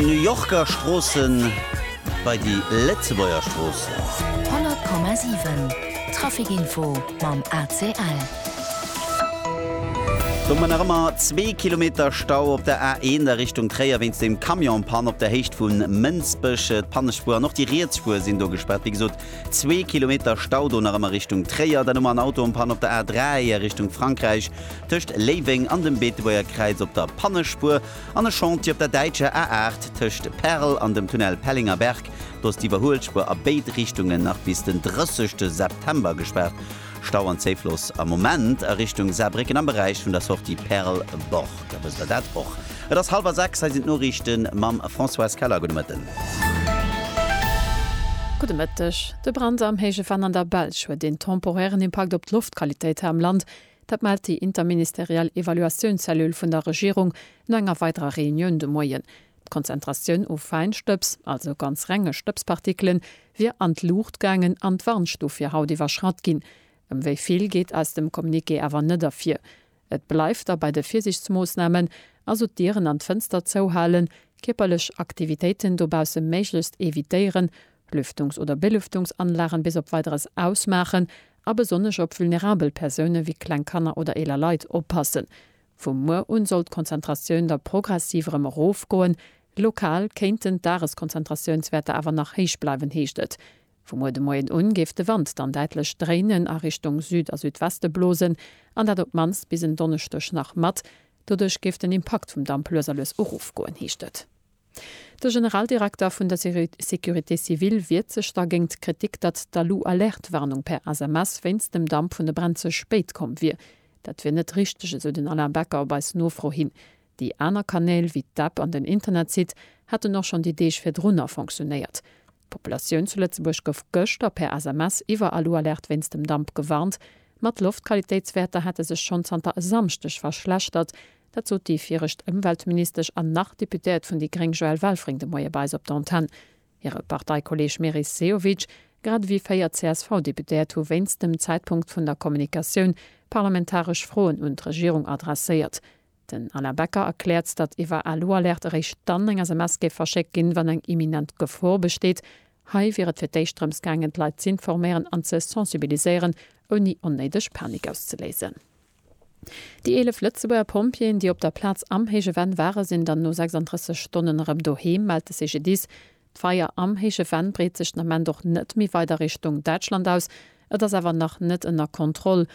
New Yorker Stroossen bei déi Lëtzebuerger Stroossen. 100,7 Traficinfo mam ACL. Do mar nach ëmmer zwee Kilometer Stau op der A1 a Richtung Tréier wéinst dem Camion Panne op der Héicht vu Mënsbech. D'Pannespuer an och déi riets Spuer sinn do gespaart. Wéi gesot zwee Kilometer Stau do nach ëmmer Richtung Tréier. Dann hu mer en Auto en Panne op der A3 a Richtung Frankräich tëscht Léiweng an dem Beetebuerger Kräiz op der Pannespuer. An e Chantier op der däitscher A8 tëscht Perl an dem Tunnel Pellingerberg. Do ass d'Iwwerhuelspuer a béid Richtungen nach bis den 30 September gespaart. Stau an Zéifloss am Moment a Richtung Saarbrécken am Beräich vun der Sortie Perl Borg. A wësst der dat och? Et ass hallwer 6, hei sinn d'Noriichte mam Françoise Keller. Gudde Mëtten. Gudde Mëtteg. De Brand am héije Venn an der Belsch huet een temporären Impakt op d'Loftqualitéit hei am Land. Dat mellt déi interministeriell Evaluatiounzellule vun der Regierung no enger weiderer Reunioun de Moien. D'Konzentratioun u Fäinstëbs, also ganz renge Stëbspartikelen, wier an d'Luucht gaangen an d'Warnstuf fir haut iwwerschratt ginn. Ëm wéi vill geet aus dem Communiqué awer net ervir. Et bleift da bei de Virsiichtsmoossnamen, also d'Dieren an d'Fënster zouhalen, kierperlech Aktivitéiten dobausse méiglechst evitéieren, Lüftungs oder Belüftungsanlagen bis op Weideres ausmaachen a besonnesch op vulnerabel Persoune wéi kleng Kanner oder eeler Leit oppassen. Vu muer un soll d'Konzentratioun da progressiv erëm erofgoen. Lokal kéinten d'Dageskonzentratiounswäerter awer nach héich bleiwen, heescht et. Vu muer de Moien un géif de Wand dann däitlech dréinen a Richtung Süd a Südweste blosen, an dat op d'mannst bis en Donneschdeg nach mat. Doduerch géif den Impakt vum Damp lues a lues erofgoen, heescht et. De Generaldirekter vun der Sécurité civile wiert sech da géingt d'Kritik, datt d'Alu-Alerte-Warnung per SMS wéinst dem Damp vun de Bränn ze spéit komm wier. Dat wier net richteg, esou den Alain Becker op eis Nofro hin. Déi aner Kanäl, wéi d'App an den Internetsite, hätten och schonn déi Deeg virdrunner fonctionéiert. D'Populatioun zu Lëtzebuerg gouf gëschter per SMS iwwer Alualerte wéinst dem Damp gewarnt. Ma d'Loftqualitéitswäerter hätte sech schonn zanter e Samschdeg verschlechtert. Dat sot déi viregt Ëmweltministesch an nach Deputéiert vun déi gréng Joëlle Welfring de Moie bei eis op der Antenn. Hire Parteikolleeg Meris Sehovic, grad ewéi véier CSV-Deputéiert hu wéinst dem Zäitpunkt vun der Kommunikatioun parlamentaresch Froen un d'Regierung adresséiert. Den Alain Becker erkläert, datt iwwer Alu-Alerte eréischt dann eng SMS géif verschéckt ginn, wann eng imminent Gefor besteet. Hei wier et fir d'éischt drëms gaangen, d'Leit z'informéieren an ze sensibiliséieren, ouni onnéideg Panik auszeléisen. Déi 11 Lëtzebuerger Pompjeeën, déi op der Plaz am Héije Venn ware sinn dann no 36 Stonnen erëm doheem, mellt de CGDIS. D'Feier am Héije Venn breet sech den Ament och net méi weider Richtung Däitschland aus. Et ass awer nach net ënner Kontroll.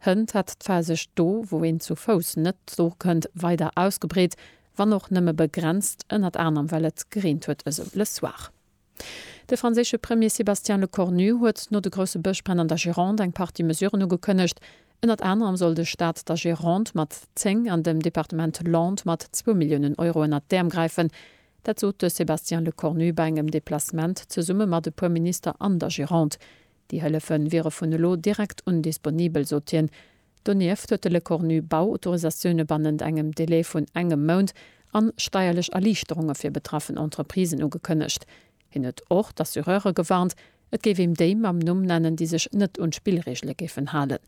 Hënt hätt d'Fahr sech do, wou een zu Fouss net dorkënnt, weider ausgebreet, wann och nëmme begrenzt, ënnert anerem well et gereent huet esou Le Soir. De franséische Premier Sébastien Lecornu huet no de grousse Bëschbränn an der Gironde eng Partie Mesuren ugekënnegt. Ënnert anerem soll de Staat der Gironde mat 10 an dem Departement Landes mat zwou Milliounen Euro ënnert d'Äerm gräifen. Dat sot de Sébastien Lecornu bei engem Deplacement zesumme mat e puer Minister an der Gironde. Déi Hëllefe wiere vun elo direkt un disponibel, sot hien. Donieft huet de Lecornu Bauautorisatioune bannent engem Delai vun engem Mount a steierlech Erliichterunge fir betraffen Entreprisen ugekënnegt. Hien huet och d'Assureure gewarnt, et géif een déi mam Numm nennen, déi sech net un d'Spillreegele géifen halen.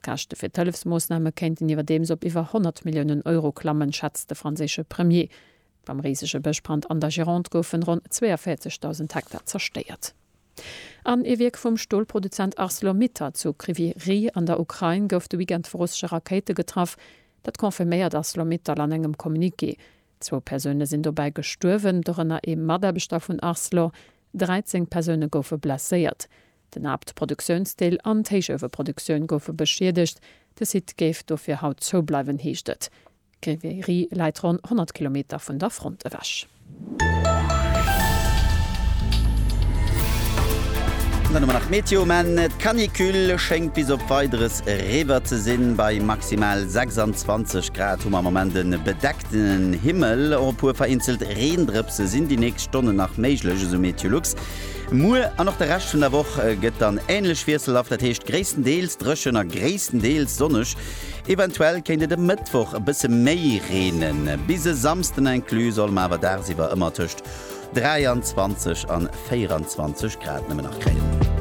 D'Käschte fir d'Hëllefsmoossname kéinten iwwerdeems op iwwer 100 Milliounen Euro klammen, schätzt de franséische Premier. Beim risege Bëschbrand an der Gironde goufen ronn 42.000 Hektar zerstéiert. An ee Wierk vum Stolproduzent Arcelor-Mittal zu Kryvyi Rih an der Ukrain gouf de Weekend vu russesche Rakéite getraff. Dat confirméiert Arcelor-Mittal an engem Communiqué. Zwou Persoune sinn dobäi gestuerwen, dorënner ee Mataarbechter vun Arcelor. 13 Persoune goufe blesséiert. Den Haaptproduktiounsdeel an d'Héichueweproduktioun goufe beschiedegt. De Site géif dofir haut zoubleiwen, heescht et. D'Grévy läit ronn 100 Kilometer vun der Front ewech. Dann hu mer nach d'Meteo, Maann, D'Canicule schéngt bis op Weideres eriwwer ze sinn. Bei maximal 26 Grad hu mer am Moment e bedeckten Himmel. Och e puer vereenzelt Reendrëpse sinn déi nächst Stonnen nach méiglech, esou Meteolux. Muer an och de Rescht vun der Woch gëtt dann änlech wiesselhaft, dat heescht gréisstendeels dréchen a gréisstendeels sonneg. Eventuell kéint et e Mëttwoch e bësse méi reenen. Bis e Samsden inclus solle mer awer dagsiwwer ëmmer tëscht 23 an 24 Grad nëmmen nach kréien.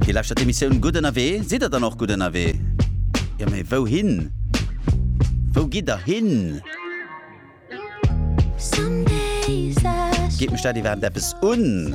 Dir lauschtert d'Emissioun Gutt ënnerwee. Sidd der dann och gutt ënnerwee? Jo, mee wouhin? Wou gitt der hin? Geet mech dat iwwerhaapt eppes un?